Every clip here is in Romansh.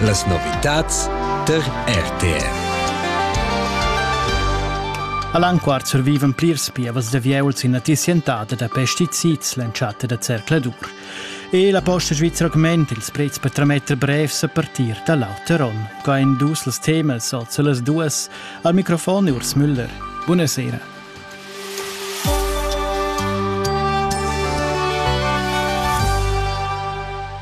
Las novitads tar RTR. All'anquart servivan plirs pievas da vieuls ina tissientada da pesticids l'entschatta da zercladur. E la posta svizra augment ils prezs per trametter brevs a partir da l'auter onn. Qua en dus las temas, also las duas, al microfon Urs Müller. Buonasera.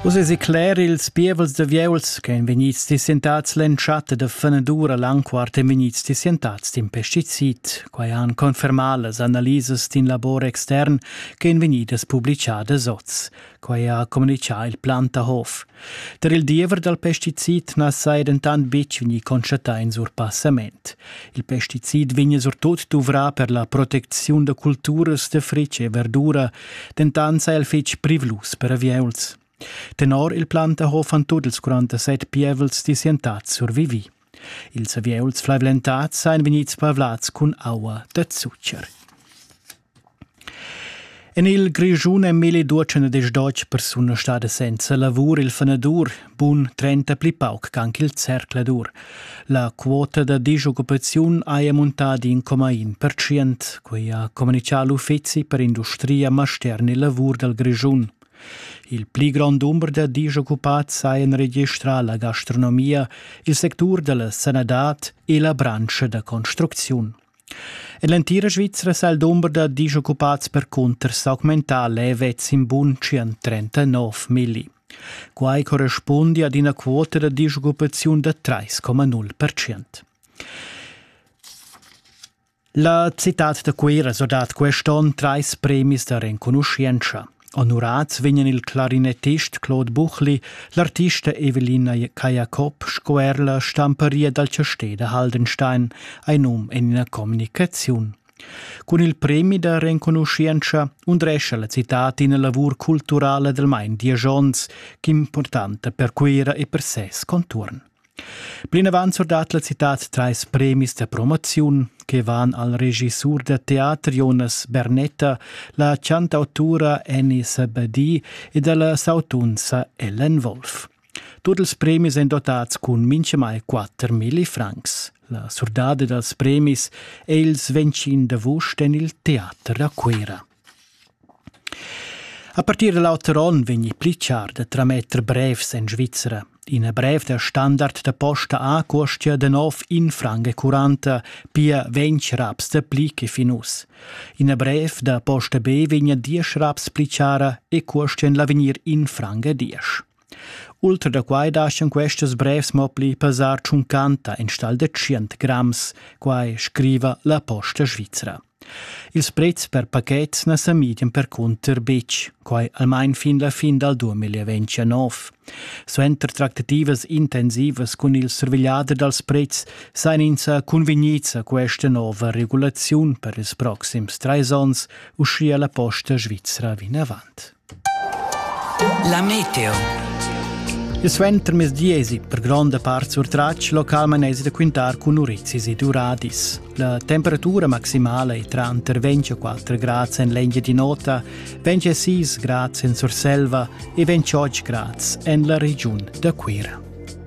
Uss esi cler ils pievels da vieuls che ein vegnids dissentats l'entschatta da fenadura l'anquart e vegnids dissentats d'in pesticid. Quai han confermà las analisas d'in labor extern che ein vegnidas publicadas oz. quai ha communitgà il Plantahof. Tar il diever dal pesticid na saja dentant betg vegnì constatà in surpassament. Il pesticid vegnia surtut duvrà per la protecziun da culturas da fritg e verdura, dentant saja el fitg privlus per avieuls. Tenor il Plantahof han tut ils 47 pievels disientats survivì. Ils avieuls flaivlentads sajan vegnids pavlads cun aua da zucher. En il Grischun è Meli Duotschen ed deutsch persuna stada senza lavur il fanadur, bun trenta pli pauc ch'anc il zercladur. La quota da disoccupaziun haja muntà d'in coma in percient, quai ha communitgà l'Uffizi per industria, mastergn e lavur dal Grischun. Il pli grond dumber da disoccupads hajan registrà la gastronomia, il sectur da la sanadad e la branscha da construcziun. En l'entira Svizra sa il dumber da disoccupats percunter s'augmentà levets in bunschian 39 milli. Quai correspundi ad ina quota da disoccupaziun da 3,0 percent. La citad da Cuira so dat quest'onn trais premis da renconuschientscha. Onurads vegnan il clarinettist Claude Buchli, l'artista Evelina Cajacob sco er la stamparia dal chastè da Haldenstein, ein num en ina communicaziun. Cun il premi da renconuschientscha undrescha la citad ina lavur culturala del Mein Diagions, importanta per Cuira e per ses conturn. Plinavant surdat la citad trais premis da promoziun che van al regissur da teater Jonas Bernetta, la chantautura Annie Sabadi ed alla sautunza Ellen Wolf. Tut ils premis èn dotads cun mintgamai 4.000 francs. La surdada dals premis è il 25 d'avust en il Teater a Cuira. A partir da l'auter onn vegni pli char da trametter brevs en Svizra. Ina brev da standard da posta A cuostia da nov in franga curanta, pia ventg raps da pli che fin uss. Ina brev da posta B vegna diesch raps pli chara e cuostia en l'avegnir in franga diesch. Ultra da quai daschan questas brevs mo pli pesar tschuncanta enstagl da tschient grams, quai scriva la Posta svizra. Ils prezs per pachets na sa midian percunter betg, quai almain fin la fin dal 2029. Suenter tractativas intensivas cun il survegliader dals prezs sajan ins cunvegnids a questa nova regulaziun per ils proxims trais onns, uschia la Posta svizra vinavant. La meteo. Il suentermezdi esi per gronda part surtratg local manesi da quintar cun urizis ed uradis. La temperatura maximala è tranter 24 grads en l'Engiadin'Ota, 26 grads en Surselva e 28 grads en la regiun da Cuira.